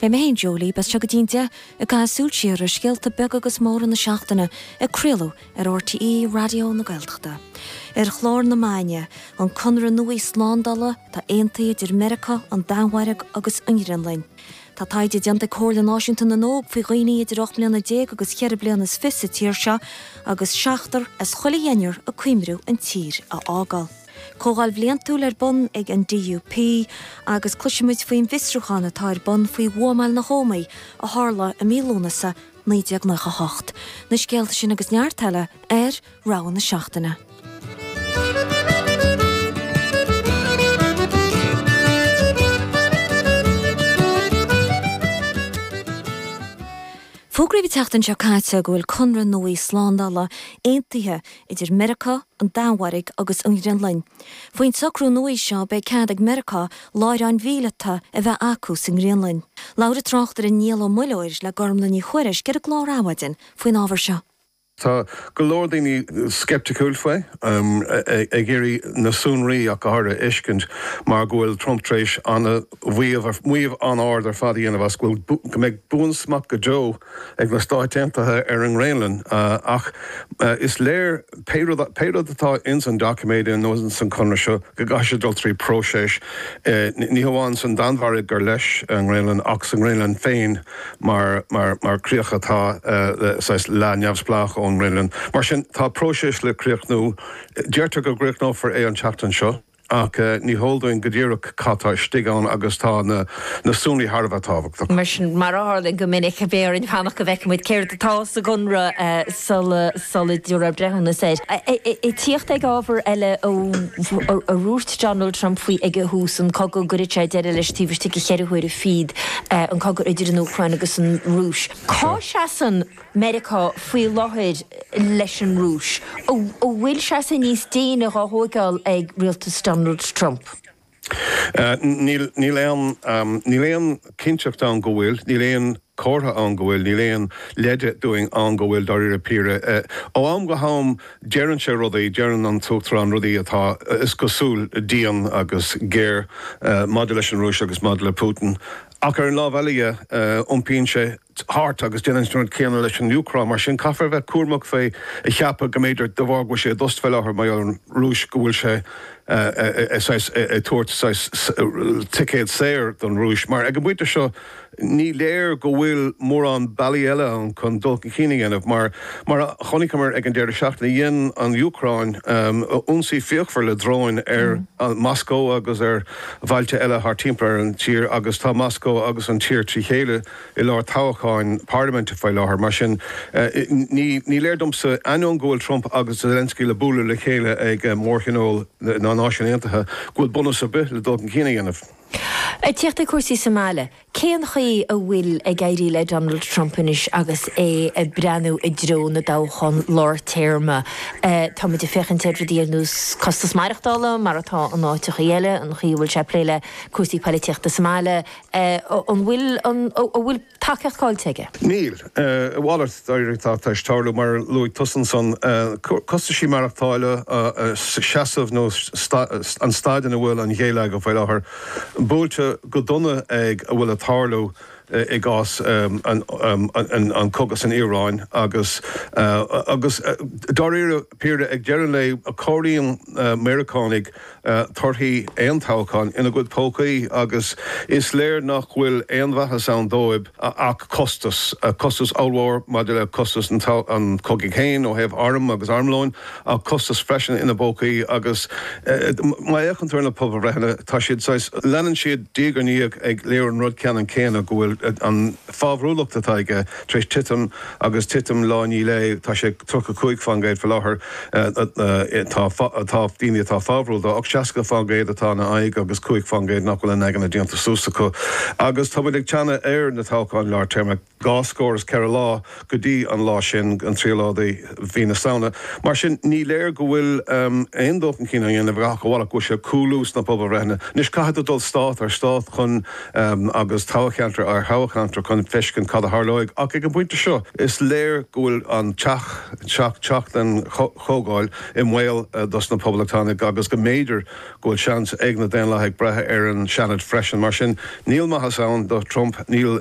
Beidh mé féin, Joe Lee, libh as seo go dtí'n deich, ag caitheamh súil siar ar scéalta beaga agus móra na seachtaine, ag craoladh ar RTÉ Raidió na Gaeltachta. Ar chlár na maidine, an conradh nua slándála atá aontaithe idir Meiriceá, an Danmhairg agus an Ghraonlainn. Tá taighde déanta ag Comhairle Náisiúnta na nÓg faoi dhaoine idir ocht mbliana déag agus cheithre bliana is fiche sa tír seo agus seachtar as chuile dheichniúr ag cuimriú an tír a fhágáil. Comhdháil Bhliantúil ar bun ag an DUP agus cloisimid faoin bhfiosrúchán atá ar bun faoi bhuamáil na hÓmaí a tharla i mí Lúnasa 1998. Na scéalta sin agus neart eile ar Rogha na Seachtaine. Fógraíodh an tseachtain seo caite go bhfuil conradh nua slándála aontaithe idir Meiriceá, an Danmhairg agus an Ghraonlainn. Faoin socrú nua seo beidh cead ag Meiriceá láithreáin mhíleata a bheith acu sa nGraonlainn. Labhair an tráchtaire Niall Ó Muilleoir le Gormlaith Ní Thuairisg ar an gclár Adhmhaidin faoin ábhar seo. Tá go leor daoine sceipticiúil faoi, ag iarraidh na sonraí ach háirithe a fheiscint mar go bhfuil Trump tar éis maíomh an-ard ar fad a dhéanamh as go bhfuil go mbeidh buansmacht go deo ag na Stáit Aontaithe ar an nGraonlainn ach is léir pé rud atá ins an doiciméid nó ins an conradh seo go gcaithfidh sé dul trí próiseas ní hamháin san Danmhairg gur leis an Ghraonlainn ach sa nGraonlainn féin mar mar críoch atá saghas leath neamhspleách ón nGraonlainn. Mar sin tá próiseas le críochnú. Deirtear go gcríochnófar é an tseachtain seo. ach ní heol dúinn go díreach cad tá istigh ann agus tá na sonraí thar a bheith tábhachtach. Mar sin, mar a tharlaíonn go minic, beidh orainn fanacht go bhfeicfidh muid céard atá sa gConradh sula sula dtabharfar breithiúnas air. Ag tíocht ag ábhar eile ar dhúirt Donald Trump faoi ag thús an cogadh go gcuirfeadh sé deireadh leis taobh istigh de cheithre huaire fichead an cogadh idir an Úcráin agus an Rúis. Cá seasann. Meiriceá faoi láthair leis an Rúis, an bhfuil seasamh níos déine dhá thóigeáil ag rialtas Donald Trump. Níl aon, níl aon cinnteacht ann go bhfuil, níl aon comhartha ann go bhfuil, níl aon leide dúinn ann go bhfuil, dáiríre píre. Ó am go ham deireann sé rudaí, deireann an tUachtarán rudaí atá, is cosúil, dian agus géar maidir leis an Rúis agus maidir le Putin. Ach ar an lámh eile dhe, iompaíonn sé, thart agus déanann siad an rud céanna leis an Úcráin. Mar sin, caithfear a bheith cúramach faoi a cheapadh go mb'fhéidir, de bharr go bhfuil sé i dtost faoi láthair mar gheall ar an Rúis, go bhfuil sé ag tabhairt ticéad saor don Rúis. Mar, ag an bpointe seo, ní léir go bhfuil mórán bealaí eile ann chun dul chun cinn a dhéanamh. Mar a chonaiceamar ag an deireadh seachtaine, dhein an Úcráin ionsaí fíochmhar le dróin ar Mhoscó agus ar bhailte eile thart timpeall ar an tír agus tá Moscó agus an tír trí chéile, i lár toghcháin parlaiminte faoi láthair. Mar sin, ní léir domsa, ainneoin go bhfuil Trump agus Zelensky le bualadh le chéile ag mórthionól na Náisiún Aontaithe, go bhfuil bunús ar bith le dul chun cinn a dhéanamh. Ag teacht ag cúrsaí sa mbaile, cén chaoi a bhfuil ag éirí le Donald Trump anois agus é ag breathnú i dtreo na dtoghchán lár téarma? Táimid ag féachaint ar rudaí ar nós costas maireachtála, mar atá in áiteachaí eile, an chaoi a bhfuil sé ag plé le cúrsaí poilitíochta sa mbaile, a An bhfuil an a bhfuil tacaíocht cáillte aige? Níl. a A mhalairt dáiríre atá tar éis tarlú, mar a luaigh tusa ansan. Costaisí maireachtála, seasamh nó an staid ina bhfuil an geilleagar faoi láthair, buailte go dona ag a bhfuil ag tarlú i gcás an cogadh san Iaráin agus agus dáiríre píre ag deireadh an lae comhairíonn Meiriceánaigh torthaí aon toghcháin ina gcuid pócaí agus is léir nach bhfuil aon mhaitheas ann dóibh ach costas, costas ollmhór maidir le costas an chogaidh féin ó thaobh arm agus armlóin ach costas freisin ina bpócaí agus má fhéachann tú ar na pobalbhreitheanna tá siad saghas, leanann siad diaidh ar ndiaidh ag léiriú an rud ceannann céanna go bhfuil an. fabhrúlacht atá aige tar éis titim agus titim lá, níl sé, tá sé 35% faoi láthair tá daoine atá fabhrúil dó ach 60% atá ina aghaidh agus 5% nach bhfuil a n-aigne déanta suas acu agus tá muid ag teannadh ar na toghcháin lár téarma dhá scór is ceithre lá. go dtí an lá sin, an tríú lá de mhí na Samhna. Mar sin, ní léir go bhfuil aon dul chun cinn á dhéanamh ach a mhalairt go bhfuil sé ag cúlú sna pobalbhreitheanna. Anois, caithfidh tú dul stát ar stát chun agus toghcheantar ar thoghcheantar chun feiscint cad a tharlóidh ach ag an bpointe seo is léir go bhfuil an teach, teach den Chomhdháil i mbaol dos na Poblachtánaigh agus go mb'fhéidir go bhfuil seans ag na Daonlathaigh breith ar an Seanad freisin. Mar sin, níl maitheas ann do Trump, níl.